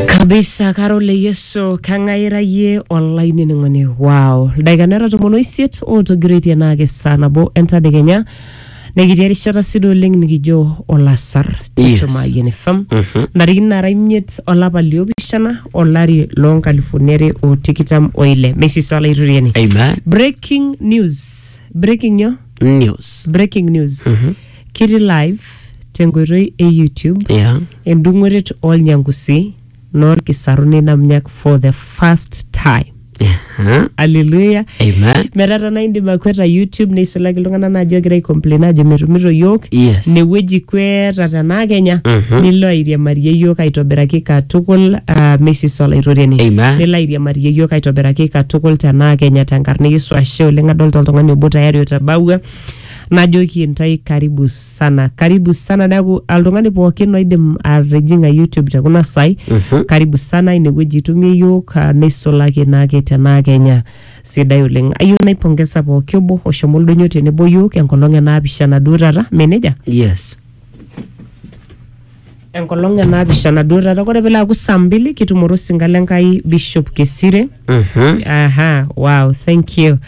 kabisa karo le yesu kang'ae ira yie olainining'oni wow ildaikani ara tomon oisiet ootogiroitie naake saa nabo entadekenya nekitii erishata sidai oleng nikijo olasar Yes. tichumayian fm Mhm. ntarikini nara imiet olapa liopishana olari loo nkalifuni are o tikitam oile meisisa olaituriani Amen. breaking news breaking nyo News. breaking news Kiti live tenkoitoi e YouTube Yeah. endung'oret olnyangusi noolkisarun inamnyak for the first time. Huh? Hallelujah. Amen. metaa tanaa indim akweta youtube neisulaki iltung'anak naajo egira aicomplain ajo metumito yiok Yes. newueji kweta tenaa kenya Mhm. nilo airiamarie yiok aitobiraki katukul uh, mesis olaitoriani Amen. nilo airiamarie yiok aitobiraki katukul tenaa kenya tenkarna yesu ashe oleng adolta oltung'ani obo tayari otabawua Najoki intae karibu sana, karibu sana neaku oltung'ani pookin oidim atijing'a YouTube te kuna saai karibu sana inewueji itumie iyiook ah, neisulaki naake tenaa Kenya sidai oleng. Ayieu naipongesa pooki obo oshomo oldonyo tenebo iyiook enkolong e naapishana duo taata, mee nejia? Yes. enkolong e naapishana duo taata kore pilo aaku saa mbili kitumore osinka le nkai bishop kesire Mhm. aha wow thank you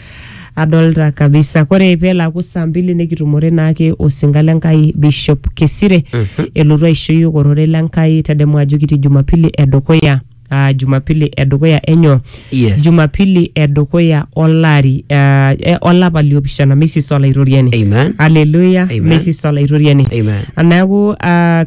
adolta kabisa kore pelo aaku saa mbili nikitumore naake osinka le nkai bishop kesire elotu aisho yiok ororei le nkai tadamu ajo kitii jumapili edukuya uh, jumapili edukuya enyo Yes. jumapili edukuya olari uh, eh, olapa liopishana mesis olaitoriani Amen. haleluya Amen. mesis olaitoriani Amen. neeku uh,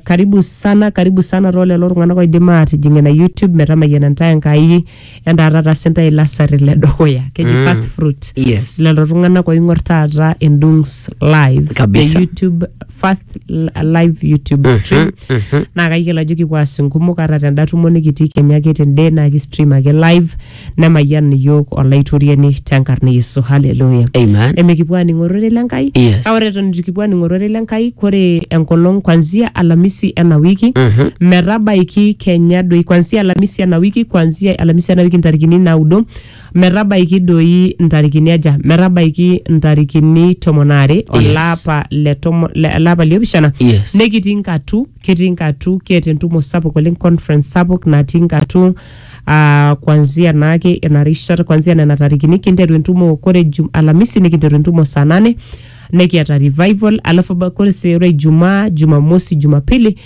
karibu sana karibu sana too lelo tung'anak oidim aatijing ina youtube metamayiana ntae enkai entaata tasa ntae lasari le dukuya keji mm. first fruit Yes. lelo tung'anak oing'or taata endungs live Kabisa. te youtube first l- live youtube stream naa kayiolo ajo kipuo aas inkumok ata tenda tumo nikitii kenya ake tende naa ki stream ake live nemayian iyiook olaitoriani tenkarna e yesu haleluya Amen. emikipuo aning ororei le nkai Yes. kake ore eton itu kipuo aning ororei le nkai kore enkolong kwanzia alamisi ena wiki Mhm. metabaiki kenya doi kwanzia alamisi ena wiki kwanzia alamisi ena wiki ntarikini naudo Metabaiki doi ntarikini aja? Metabaiki ntarikini tomon aare olapa le tomo- le- olapa liopishana Yes. nekitii nkatu ketii nkatu keeta entumo sapuk oleng conference sapuk natii nkatu uh, kwanzia naake ina rishata kwanzia nena tarikini kinteru entumo kore jum, alamisi nikinteru entumo saa nane nekiata revival alafu ba- kore se- ore ijumaa jumamosi jumapili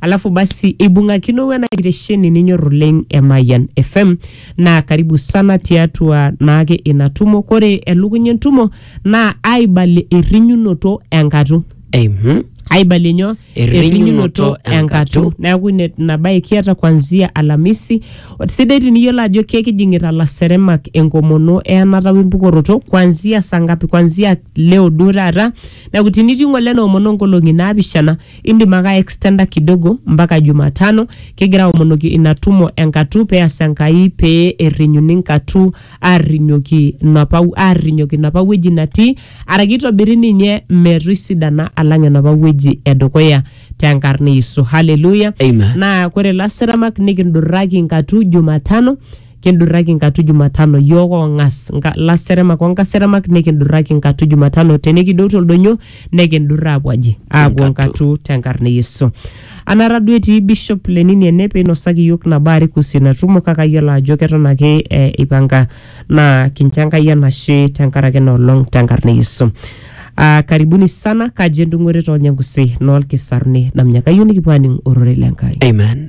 Alafu basi eibung'akino wena kitesheni ninyor oleng e Mayian FM naa karibu sana tiatua naake ina tumo. Kore elukunya entumo naa aibalie errinyunoto enkatu. Mhm. aibalie nyoo Errinyunoto enkatu. neeku ine- ina bae kiata kuanzia alamisi sidai tiniyiolo ajo kekijing'ita laseremak enkomono eyanata wempukoroto kuanzia saa ngapi kuanzia leo duo taata Neaku tinitii ng'ole noomono nkolong'i naapishana, indim ake aekstenda kidogo mpaka Jumatano kigira aomonoki ina tumo e nkatu pee eas Enkai pee errinyuni nkatu aarrinyoki nopa aarrinyoki nopa wueji natii araki eitobiri ninye metoisidana alang enopa wueji e dukuya te nkarna e Yesu. Haleluya! Amen. Naa kore lasiramak nikindurraki nkatu Jumatano kindurraki nkatu Jumatano, yook oong'as, nka, laseremak o nkaseremak nikindurraki nkatu Jumatano, tenikidou to ldonyo nikindurr aapuo aji? Aapuo nkatu te nkarna e Yesu. Anaata duo etii Bishop Lenini ene pee einosaki yook nabo are kuhusu ina tumo kake ayiolo ajo keton ake eipanga naa kincho Enkai enashe te nkaraki ena olong te nkarna e Yesu. Aa karibuni sana, kaji entung'ore too Lnyangusi noo Lkisarni, naminye kayieu nikipuo aaning ororei le Nkai. Amen.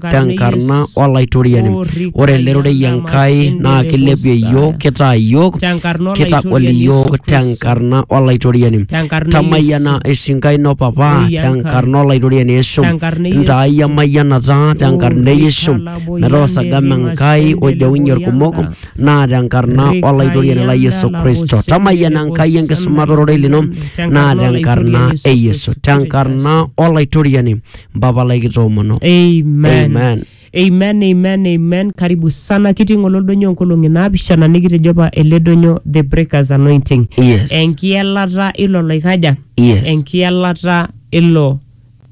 tenkarna olaitoriani ore ele rorei enkai naa kilepie iyiook kitaa iyiook kitagol iyiook tenkarna olaitoriani tamayiana esinkai ino papa tenkarna olaitoriani yesu ntaai emayianata tenkarna e yesu metaa osagama enkai ojeunye irkumok naa tenkarna olaitoriani lai yesu kristo tamayiana enkai enkisumata ororei lino naa tenkarna e yesu tenkarna olaitoriani mpapa lai kitoomono Amen. Amen. Amen, amen, amen. Karibu sana kitii ng'ole oldonyo nkolong'i naapishana nikitejo apa ele donyo the breakers anointing. Yes. Enkielata ilo loikaja. Yes. Enkielata ilo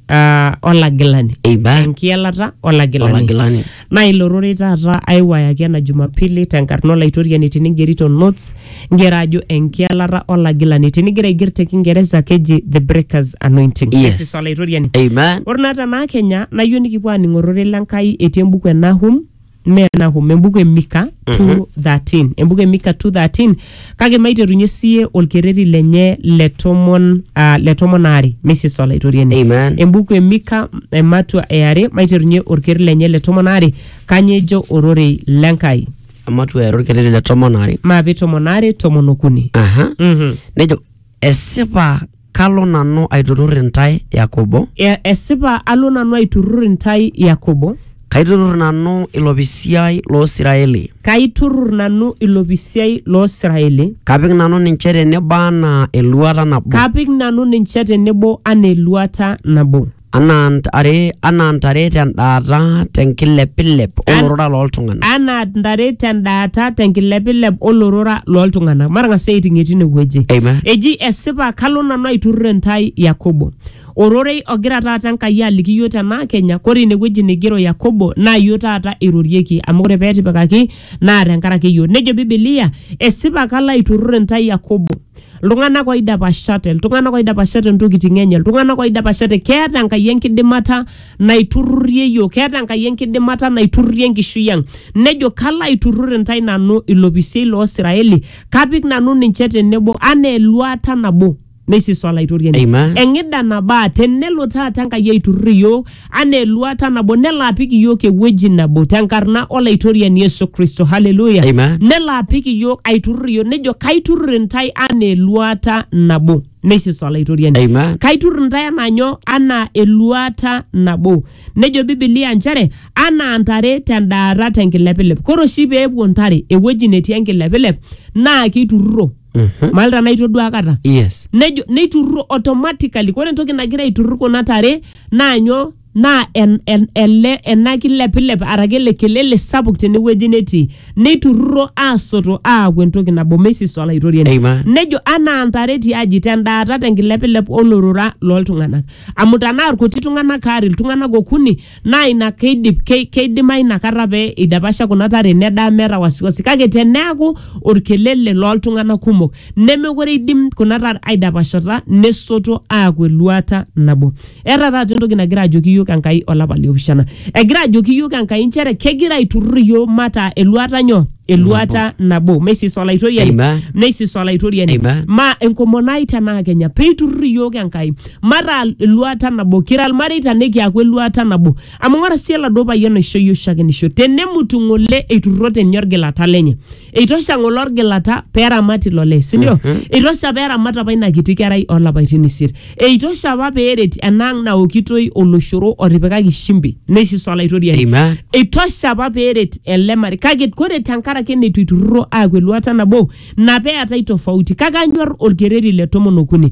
uh, olagilani. Amen. Enkielata olagilani. olagilani Naa ilo rorei taata aiwayaki ena Jumapili tenkarna Olaitoriani tiningerito notes ngero ajo enkialata olagilani. Tinigira aiger te Kingeresa keji The Breaker's Anointing. Yes. Kesis Olaitoriani. Amen. Ore naa tenaa Kenya nayieu nikipuo aaning ororei le Nkai etii embuku e Nahum mee Nahum, embuku e Mika 2:13. Embuku e Mika 2:13 kake maiterunye siye olkerreti lenye le tomon ah, le tomon aare misis olaitoriani Amen. embuku e mika ematua e are maiterunye olkerreti lenye le tomon aare kanye ejo ororei lenkai Ematua era olkerreti le tomon aare. maape tomon aare tomon okuni aha Mhm. nejo Esipa kalo nanu aiturrur intae Yakobo, E- Esipa alo nanu aiturrur intae Yakobo, kaiturrur nanu ilopisiai loo Siraeli, kaiturrur nanu ilopisiai loo Siraeli, kapik nanu ninche tenebo anaa eluata nabo. kapik nanu ninche tenebo anaa eluata nabo. anaa ntare anaa ntare tendaata tenkilepilep An- olorora looltung'anak anaa ntare tendaata tenkilepilep olorora looltung'anak matang'as aiting'ie tine wueji Amen. eji esipa kalo nanu aiturrur intae yakobo ororei ogira taata enkai aliki iyioo tenaa kenya kore ine wueji neigero yakobo naa iyioo taata eirorieki amu ore peetipikaki naa tenkaraki iyioo nejo bibilia esipa kalo aiturrur intae yakobo iltung'anak oidapashate iltung'anak oidapashate ntokitin enye iltung'anak oidapashate keeta enkai enkidimata naiturrurie yiok keeta enkai enkidimata naiturrurie enkishui ang nejo kalo aiturrur intae nanu ilopisiei loo Israeli kapik nanu ninche tenebo anaa eluata nabo neisis olaitoriani Amen. eng'ida nabaa tenelo taata enkai aiturrur iyiok anaa eluata nabo nelo apik iyiook ewueji nabo tenkarna olaitoriani Yesu Kristo haleluya Amen. nelo apik iyiook aiturrur iyiook nejo kaiturrur intae anaa eluata nabo neisisa olaitoriani Amen. kaiturrur intae anaa nyoo anaa eluata nabo nejo bibilia nchere anaa ntare tendaata tenkilepilep kore oshi peepuo ntare ewueji netii enkilepilep naa keiturruro Mhm. maalta naitodua akata yes nejo neiturruro automatically ore entoki nagira aiturrur kuna tare naa nyoo naa en, en, ele ena kilepilep araki ele kelele sapuk tenewueji netii neiturruro aasoto aaku entoki nabo meisisa olaitoriani Amen. nejo anaa ntare tiaji tendaata tenkilepilep olorora loltung'anak amu tanaa irkuti tung'anak aare iltung'anak okuni naa ina keidip kei- keidimayu inakata pee idapasha kuna tare nedaa meeta wasiwasi kake teneaku orkelele looltung'anak kumok nemekure idim kuna tare aidapashata nesoto aaku eluata nabo eeta taata entoki nagira ajoki iyiok enkai olapa liopishana egira ajoki iyiok enkai inchere kegira aiturrur iyiok mataa eluata nyoo eluata nabo meisis olaitoriani Amen. meisis olaitoriani Amen. ma enkomono ai tenaa kenya peiturrur iyiok enkai Mataa eluata nabo, kira ilmareita nikiaku eluata nabo. Amu ng'ora sii oladuo payian oisho iyiook shakenisho, tenemut ng'ole eiturrote ninye olgilata lenye. Eitosha ng'ole olgilata pee eramat ilo lee, si ndio? Eitosha pee eramat apa ina kiti kerai oo lapaitin isiet. Eitosha apa pee eret ena ang' naokitoi oloshoro otipikaki shimbi neishiso Olaitoriani. Amen. Eitosha apa pee eret ele marei. Kake ore tenkaraki eneitu eiturrurro aaku eluata nabo, ina pee eetae tofauti. Kake anyor olkereri le tomon okuni.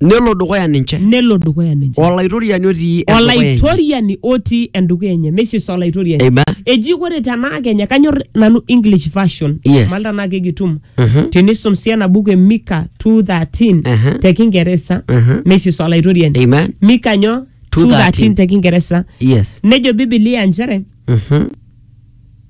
nelo dukuya ninche nelo dukuya ninche olaitoriani otii endukuya enye. olaitoriani otii endukuya enye mesis olaitoriani Amen. eji ore tenaa kenya kanyor nanu english version Yes. mal tenaa kegitum Mhm. tinisum sii ena buku e mika 213 Mhm. te kingeresa Mhm. mesis olaitoriani Amen. mika nyo 2:13 2:13 te kingeresa Yes. nejo bibilia nchere Mhm.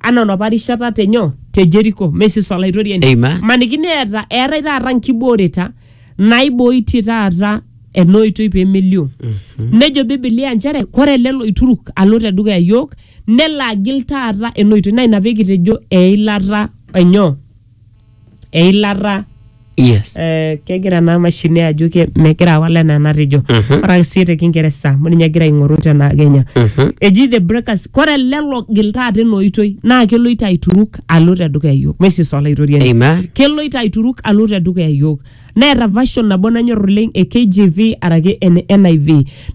anaa enapa rishata te nyoo te jeriko mesis olaitoriani Amen. maniki neeta eetae taata nkibooreta naibooitie taata ena oitoi pee melio nejo bibilia nchere kore ele loituruk alo te dukuya yiok nelo agil taata ena oitoi naa ina pee kitejo eilata enyoo eilata yes eh, kegira ena mashini ajo ke- megira awal enaa enatejo Mhm. ore ake sii te kingeresa amu ninye egira aing'oru tena kenya Mhm. eji the breakers kore lelo gil taata ena oitoi naa keloito aituruk alo te dukuya yiok mesis olaitoriani amen keloito aituruk alo te dukuya yiok neeta version nabo nanyor oleng e KJV araki ene NIV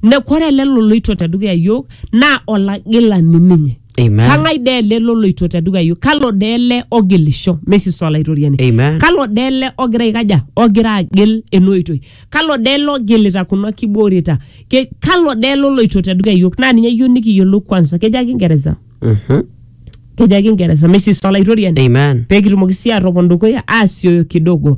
ne kore lelo loito te dukuya yiok naa olagilani ninye Amen. kang'ae dee ele loloito te dukuya iyiok kalo dee ele ogilisho mesiso olaitoriani Amen. kalo dee ele ogira aikaja ogira agil ena oitoi kalo dee ele ogilita kuna kibooreta Ke- kalo dee ele oloito te dukuya iyiok naa ninye eyieu nikiyiolou kwanza kejo ake ingeresa Mhm. kejo ake ingeresa mesiso olaitoriani Amen. pee kitumoki sii atopon dukuya aasioyo kidogo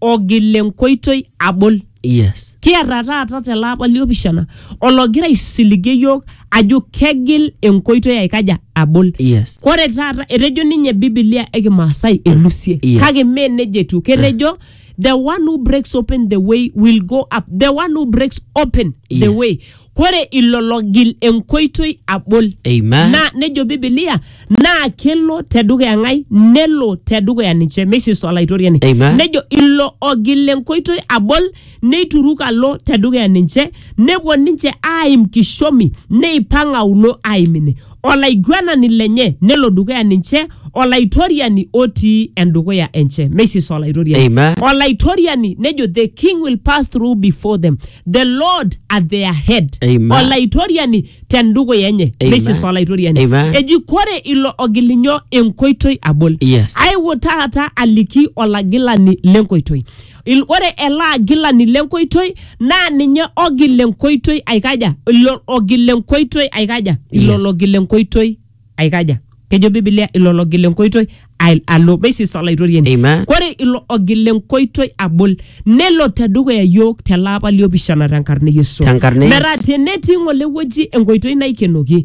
ogil enkoitoi abol. Yes. Kiata taata tele apa liopishana ologira aisiligie iyiook ajo kegil enkoitoi aikaja abol. Yes. Kore taata etejo ninye Biblia e Kimaasai elusie Yes. kake mee nejia etiu. Ketejo the one who breaks open the way will go up. The one who breaks open the Yes. way. kore ilo logil enkoitoi abol Amen. naa nejo bibilia naa kelo tedukuya ng'ai nelo tedukuya ninche meisisu olaitoriani Amen. nejo ilo ogil enkoitoi abol neituruk alo tedukuya ninche nepuo ninche aaim kishomi neipang aulo aim ine olaiguanani lenye nelo dukuya ninche olaitoriani otii endukuya enche meisis olaitoriani Amen. olaitoriani nejo the king will pass through before them the lord at their head Amen. olaitoriani tendukuya enye Amen. meisis olaitoriani Amen. eji kore ilo ogilinyo enkoitoi abol Yes. I will taata aliki olagilani lenkoitoi Il- ore ele agilani lenkoitoi naa ninye ogil enkoitoi aikaja ilo ogil enkoitoi aikaja ilo Yes. logil enkoitoi aikaja kejo bibilia ilo logil enkoitoi al- alo basis olaitoriani Amen. kore ilo ogil enkoitoi abol nelo tedukuya yiok telaapa liopishana tenkarna e yesu Tenkarna e Yesu. metaa tenetii ng'ole wueji enkoitoi naikenoki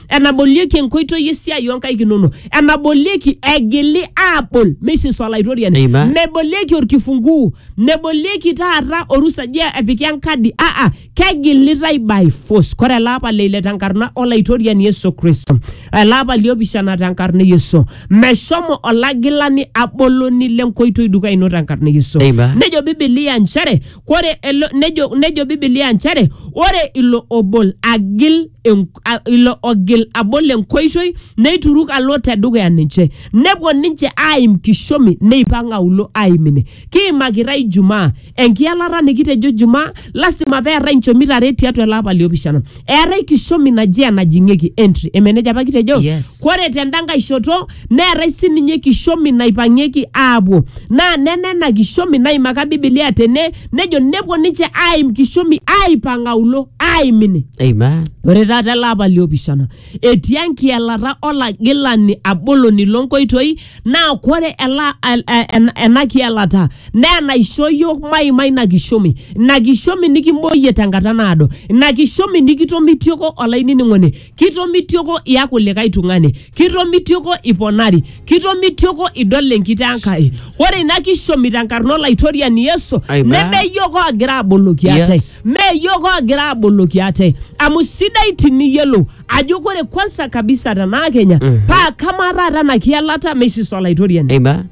enabolieki enkoitoi esiai oonkaik inono enabolieki egili aabol meisisa olaitoriani Amen. mebolieki orkifunguu mebolieki taata orusa je epiki enkadi aa kegilitai by force kore ele apa le ile tenkarna olaitoriani yesu kristo ele apa liopishana tenkarna e yesu meshomo olagilani aboloni lenkoitoi dukuya ino tenkarna e yesu Amen. nejo bibilia nchere Kore elo nejo, nejo Biblia nchere ore ilo obol agil en, a, ilo ogil abol enkoitoi neituruk alo te dukuya ninche nepuo ninche aaim kishomi neipang aulo aaim ine. Kiimakita Ijumaa enkialata nikitejo Jumaa lasima peetai nchomit are tiatua ele apa liopishana. eetae kishomi naje enajing'ieki entry emeneja apa kitejo Yes. kore tenda nkae shoto neetae sininye kishomi naipang'ieki aapuo naa nena ena kishomi naimaka bibilia tene nejo nepuo ninche aaim kishomi aaipang aulo aaim ine Amen. ore taata ele apa liopishana etii enkielata olagilani aboloni lonkoitoi naa kore ela, el, en, ena kielata naa enaisho yiok maima ina kishomi ina kishomi nikimboyie tenkata naado ina kishomi nikitomitioko olainining'oni kitomitioko iaku likae tung'ani kitomitioko iponari kitomitioko idol enkitaa Enkai ore ina kishomi tenkarna olaitoriani Yesu Amen. neme yiok oogira aboloki ate Yes. mee yiok oogira aboloki ate amu sidai tiniyiolou ajo kore kwansa kabisa tenaa kenya Mhm. paa kamaa taata ena kielata meisisa olaitoriani Amen.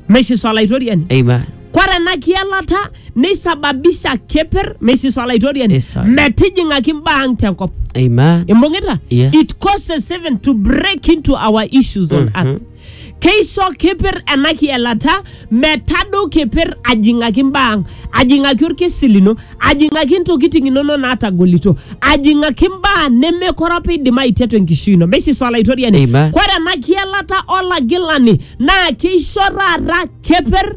meisisa olaitoriani Amen. kore ena kielata neisababisha keper meisisa olaitoriani Yes, sir. metijing'aki mbaa ang tenkop Amen. imbung'ita Yes. it causes even to break into our issues on earth keisho kipir ena kielata metadou kipir ajing'aki imbaa ang ajing'aki orkesi lino ajing'aki intokiting inono naatagolito ajing'aki imbaa nemekore apa idim aitetu enkishui ino meisisa olaitoriani Amen. kore ena kielata olagilani naa keisho taata kepir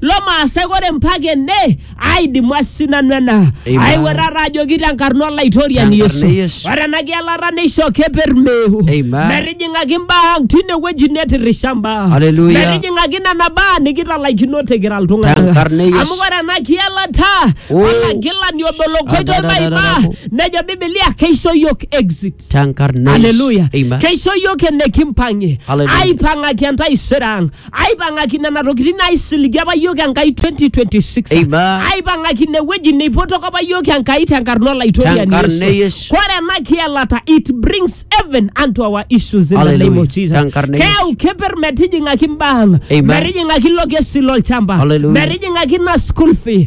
lomaasai ore mpaka ene aidimu asinanu ena Amen. aiwuerara ajoki tenkarna olaitoriani Tenkarna yesu Yesu. ore ena kialata neisho keper meu Amen. metijing'aki mbaa ang tine wueji netirisha mbaa Hallelujah. metijing'aki nena baa nikitalaikino tikira iltung'anak Tenkarna Yesu. amu ore ena kialata Oh. olagilani obo lokoitoi Adadadadada. maimaa nejo bibilia keisho yiok exit tenkarna Yesu. haleluya Amen. keisho yiok enekimpang'ie Hallelujah. aipang'aki entaisere ang aipang'aki nena tokitin naisiligie apa yiok enkai 2026 Amen. aipang'aki ine wueji neipotoko apa yiok enkai tenkarna olaitoriani Tenkarna Yesu. e Yesu. kore ena kielata it brings heaven unto our issues in the Hallelujah. name of Jesus Tenkarna e Yesu. keyau keper metijing'aki mbaa ang Amen. metijing'aki ilo kesi lolchamba Hallelujah. metijing'aki ina school fee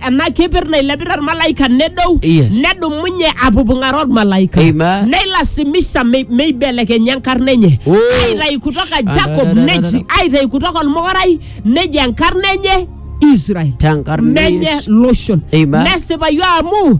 ena keper nailepita ormalaika nedou Yes. nedumunye apupung'aro ormalaika Amen. neilasimisha mei- meibelekenya enkarna enye Oh. aitayu kutoka jacob da, da, da, da, neji da. aitayu kutoka olmokorai neji enkarna enye israel Tenkarna menye Yesu. loshon Amen. nesipayu amu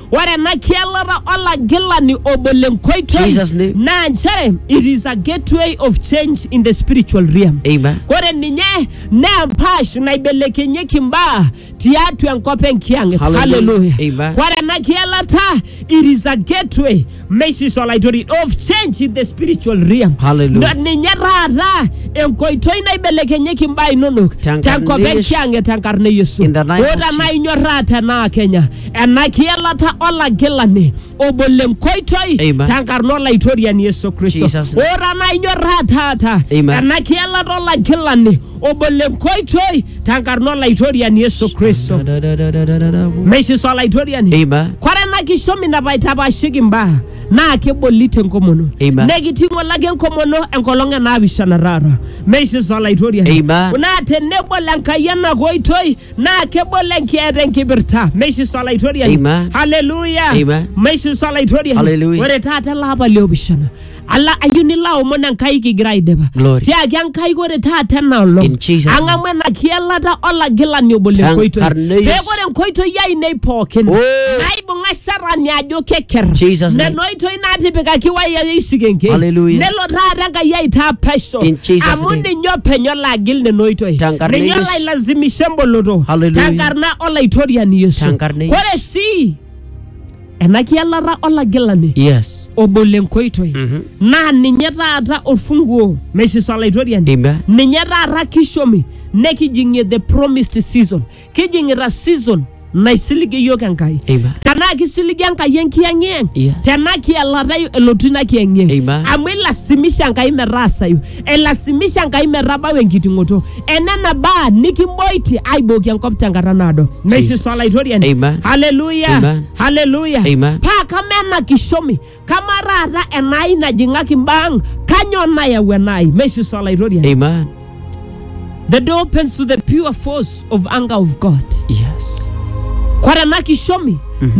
Ore ena kielata olagilani obo le nkoitoi Jesus name. naa nchere it is a gateway of change in the spiritual realm. Amen. Ore ninye naa empaash naibelekenyieki imbaa tiatua enkop enkiang'et. Hallelujah. Hallelujah. Amen. Ore ena kielata it is a gateway meisisa olaitoriani of change in the spiritual realm Hallelujah. Na- ninye taata enkoitoi naibelekenyeki imbaa inonok Tenkarna tenkop e Yesu. enkiange tenkarna e yesu In the name of ota Jesus. naa inyorraa tenaa kenya ena kielata olagilani obol enkoitoi Amen. tenkarna olaitoriani yesu kristo Jesus' name. ota naa inyorraa taata Amen. ena kielata olagilani obo le nkoitoi tenkarna olaitoriani Yesu Kristo. Meisisa olaitoriani. Amen. Kore ena kishomi napaitapashiki imbaa naa keboli te nkomono. Amen. Nekiting'o lake enkomono enkolong e naapishana taata. Meisisa olaitoriani. Amen. Naa tenebol Enkai ena koitoi naa kebol enkieta enkipirta. Meisisa olaitoriani. Amen. Haleluya. Amen. Meisisa olaitoriani. Haleluya. Ore taata ele apa le opishana ala ayieu nilo aomon enkai kigira aidipa Glory. tiaki enkai ore taata ena olong In Jesus' name. ang'amu ena kielata olagilani obo le Tang- nkoitoi Arneus. pee ore nkoitoi ainei pookin Oh. naibung'a sharani ajo keker Jesus' name. nena oitoi naatipikaki waya eisikenke Hallelujah. nelo taata enkai aitaa pesho In Jesus' amu name. ninye openy olo agil nena oitoi Tenkarna ninye Yesu. olo ailazimisha emboloto Hallelujah. tenkarna olaitoriani yesu Tenkarna Yesu. ore sii ena kialata olagilani Yes. obo le nkoitoi Mhm. naa ninye taata orfunguo meisisa olaitoriani Amen. ninye taata kishomi nekijing'ie the promised season kijing'ita season naisiligie yiok enkai Amen. tenaa kisiligie enkai enkiyang'iyang Yes. tenaa kialata elotu ina kiyang'iyang Amen. amu ilasimisha enkai metaasayu Elasimisha Enkai metabau enkiting'oto enena baa nikimboitie aibooki enkop tenkata naado. Naisis Jesus. Olaitoriani. Amen. Haleluya. Amen. Haleluya. Amen. Paa kama ena kishomi, kama taata enaai najing'aki mbaa ang, kanyoo nayau enaai? Meisis Olaitoriani. Amen. The door opens to the pure force of anger of God. Yes. Kore ena kishomi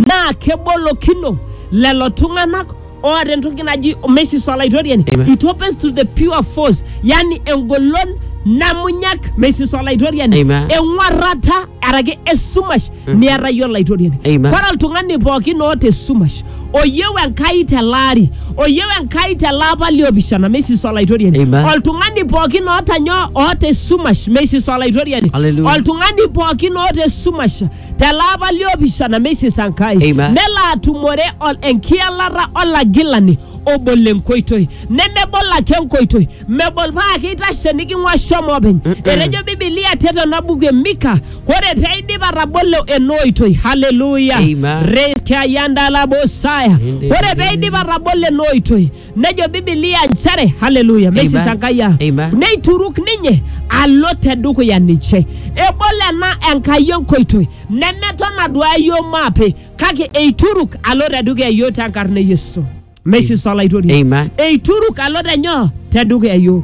naa kebolokino lelo tung'anak oota entoki naji omesis olaitoriani Amen. it opens to the pure force yani engolon namunyak mesis olaitoriani Amen. eng'uarrata araki esumash niata iyie olaitoriani Amen. Ore oltung'ani pookin oota esumash oyieu enkai tele ari oyieu enkai tele apa liopishana mesis olaitoriani Amen. oltung'ani pookin oota nyoo oota esumash mesis olaitoriani Hallelujah. oltung'ani pookin oota esumash telaapa liopishana meisisa Nkai Amen. nelo atumore ol- enkialata olagilani obol enkoitoi nemebol ake enkoitoi mebol paa keitashe niking'ua shomo openy etejo bibilia tetena buku e mika ore pee aidip atabolo ena oitoi haleluya Amen. reskiayandalabosaya Inde- ore pee aidip atabolo ena oitoi nejo bibilia nchere haleluya Amen. mesisangaya Amen. neituruk ninye alo tedukuya ninche ebol ena enkai enkoitoi nemeton aduaya yiok maape kake eituruk alo tedukuya yiok tenkarna e yesu mesisa olaitoriani Amen. eituruk alo tenyoo tedukuya yiok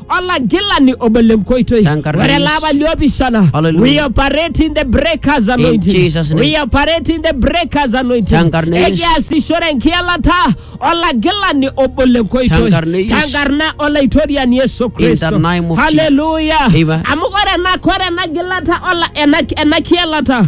olagilani obo lenkoitoi Tankarna ore Yesu. laapa liopishana Hallelujah. we operate in the breakers anointing Jesus' name. we operate in the breakers anointing Tankarna Yesu. ekiasishore enkialata olagilani obo lenkoitoi Tankarna Yesu. tankarna olaitoriani yesu kristo the name of Jesus. haleluya Amen. amu ore ena ore ena gilata ola- ena ena kialata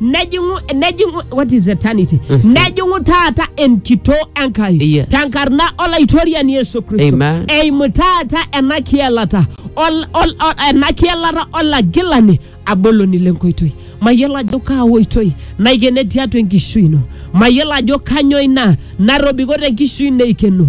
nejing'u nejing'u what is eternity nejing'u taata enkitoo enkai Yes. tenkarna olaitoriani yesu kristo Amen. eimu taata ena kielata ol- ol- ol- ena kielata olagilani aboloni lenkoitoi mayiolo ajo kaa oitoi naikene tiatua enkishui ino mayiolo ajo kanyoo ina narobiko tenkishui ino eikeno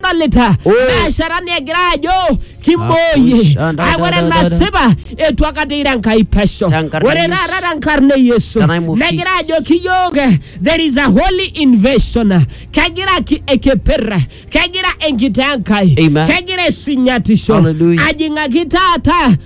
nadolita Oh. biashara negira ajo kimbooyie Akusha, da, Ah, da, ore da, da, da. nasipa etu akata ira enkai pesho Tenkarna ore Yesu. taata tenkarna e yesu The name of negira Jesus. ajo kiyook eh, there is a holy invasion kegira ki- ekeper kegira enkitoo enkai Amen. kegira esinyatisho Hallelujah. ajing'aki taata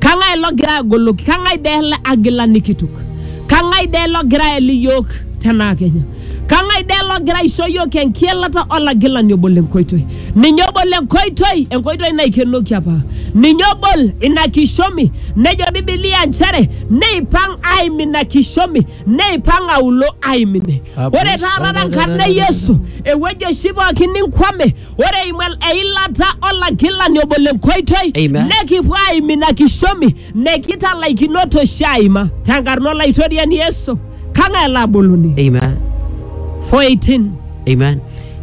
Kang'ae logira agoloki? Kang'ae dee ele agilani kitok? Kang'ae dee logira ael iyiook tenaa kenya? Kang'ae dee logira aisho iyiook enkielata olagilani obol enkoitoi? Ninye obol enkoitoi, enkoitoi naikenoki apa. Ninye obol ina kishomi, nejo Bibilia nchere neipang aim ina kishomi, neipang aulo aim ine. Ore taata tenkarna e Yesu, ewueji oshi pooki ninkwame, Ore eimu el- eilata olagilani obo le nkoitoi Amen. nekipuo aim ina kishomi nekitalaikinoto oshi aima tenkarna olaitoriani Yesu kang'ae laboluni Amen. 418 Amen.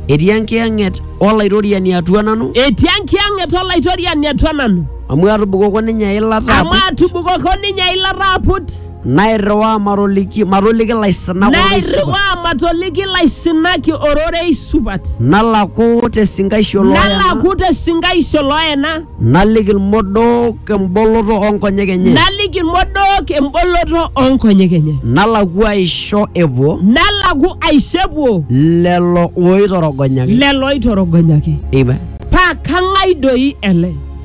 Etii enkiyang'et olaitoriani atua nanu etii enkiyang'et olaitoriani atua nanu amu atubukoko ninye eilata amu aput. atubukoko ninye eilata aput Nairriwaa matoliki, matoliki laisinak ororei supat. Nairriwaa matoliki laisinak ororei supat. Nalaku te sinkaisho looyena. Nalaku te sinkaisho looyena. Naliki ilmodook emboloto oo nkonyek enye. Naliki ilmodook emboloto oo nkonyek enye. Nalaku aisho epuo. Nalaku aisho epuo. Lelo ooitorogonyaki. Lelo ooitorogonyaki. Amen. Paa kang'ai doi ele?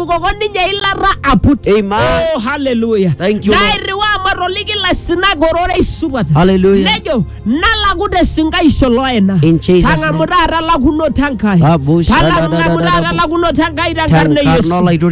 koko ninye ilata aput. Amen. Oh, hallelujah. Thank you, Lord. Nairriwaa matoliki ilaisinak ororei supat. Hallelujah. Nejo, nalaku te sinkaisho loena. In Jesus' Tang'amu name. taata lakunoto Enkai. Abu shadadadadadabu. Tang'amu taata lakunoto Enkai tenkarna e Tenkarna Yesu. olaitoriani